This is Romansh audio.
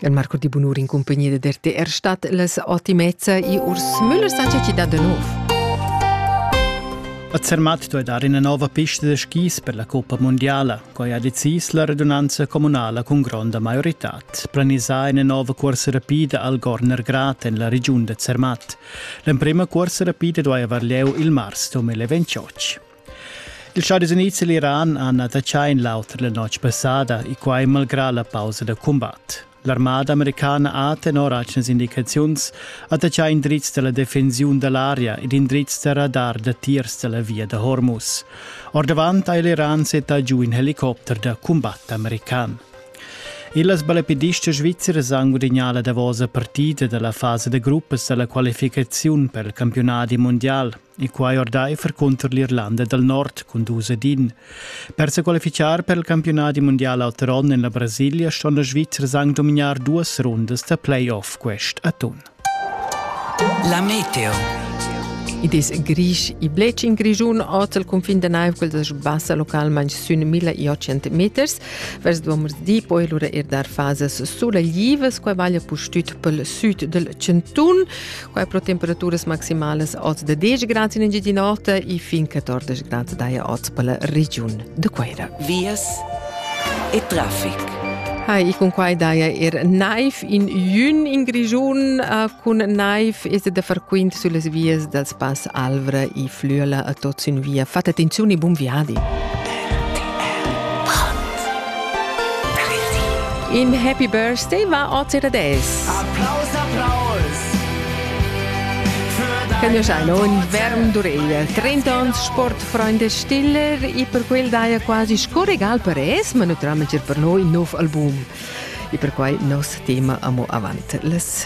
Il Marco di Bunur in cumpagnia da RTR stat las ottimezza e Urs Müller Sanchez ci dà da nov. A Zermatt duai dar ina nova pista da skis per la Coppa Mondiala, quai ha decis la radunanza communala cun gronda maioritad. Planisà ina nova cuorsa rapida al Gorner Grat en la regiun da Zermatt. L'emprima cuorsa rapida duai avair lieu il mars 2028. Il Chadis Unids e l'Iran han attaccà in l'auter la notg passada e quai malgrà la pausa da cumbat. L'armada americana ha tenor atgnas indicaziuns attaccà indrizs da la defensiun da l'aria ed indrizs da radar da tiers da la via da Hormuz. Ordavant ha l'Iran settà giu in helicopter da cumbat american. Illas balapedistas svizzeras han gudagnà la davosa partida da la fasa da gruppas da la qualificaziun per il campionat mondial. e quai ordaifer cunter l'Irlanda dal Nord cun dus ed in. Per se qualificar per il campionati mondial l'alter onn en la Brasilia ston la Svizzers anche dominar duas rundas da playoff quest atun. La Meteo Id es grisch i blech in Grischun ot al cunfin da naiv quel da sbassa localmain sün 1800 meters. Vers di poi lura er dar fasas suleglivas, quai vaglia pustüt pel sud del Centun. Quai pro temperaturas maximalas oz da 10 grads in Engiadin'Ota e fin 14 grads daja oz per la regiun de Queira. Vias e traffic. Hai, e con quai daja er naiv in jun in Grigiun uh, cun naiv es da far quint sulle vias dal Spass Alvra e Flüela a tot sin via. Fate attenzione e buon viadi. In happy birthday va oter ad es. Applaus, applaus. Cagnusch ein on verm d'ureglia. 30 ans sportfreunde stiller e per quel daia quasi scorregal per es, ma naturalmente per noi nov album. E per quai nos tema amo avant las